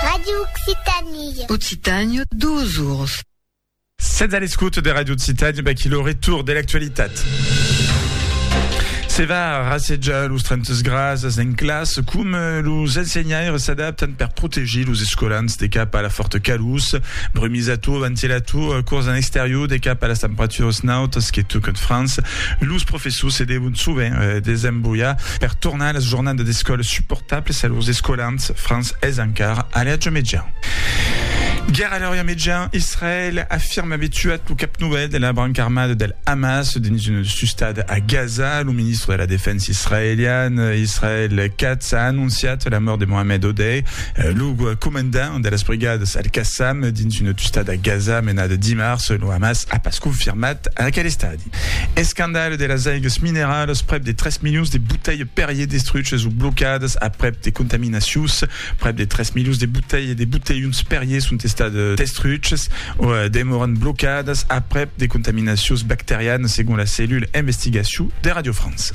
Radio Occitanie. Occitània, duas oras. Sètz a l'escouta de Radio Occitània, baquí lo retour de l'actualitat. Se va rassejar los 30 grasas en classe, com eh, los ensenhaires s'adaptan per protegir los escolans de cap a la forta calús, brumisator, ventilator, eh, cors en exterior de cap a las temperaturas nautas que tocan França. Los professors se devon sovent eh, desembullar Per tornar a las jornadas d'escòla suportables a lors escolants, Franç es encara a l'eatge mejan. Guèrra a l'eatge mejan, Israèl afirma aver tuat lo cap novèl de la branca armada del Hamas dins una sustada a Gaza. Lo ministre de la Defensa israelian, Israel Katz, a anonciat la mòrt de Mohamed Odeh, lo comandant de las brigadas Al-Qassam dins una tustada a Gaza menada dimars. Lo Hamas a pas confirmat aquel estadi. Escandalh de las aigues mineralas, prèp de 3 milions de botelhs Perrier destruches o blocadas aprèp de contaminacions. Prèp de 3 milions de botelhs de botelhons Perrier son estats destruches o demòran blocadas aprèp de contaminacions bacterianas, segon la cellula investigacion de Radio France.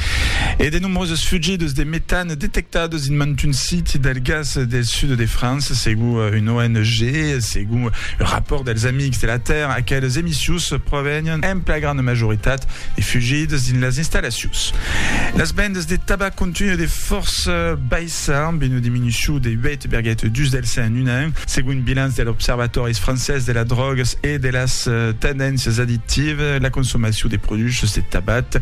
E de nombroses fugidas de metan. Detectados dins mantun siti del gas del sud de França, segon una ONG e segon un rapòrt dels Amics de la Tèrra, aqueles emissius provenián en plagrana majoritat de fugidas dins las installacions. Las vendas de tabac continuen de fòrça baissar, amb una diminucion de 8,2 del cent en un an, segon un bilanç de l'Observatòris francés de las drògas e de las tendéncias addictivas, la consomacion de produchos de tabac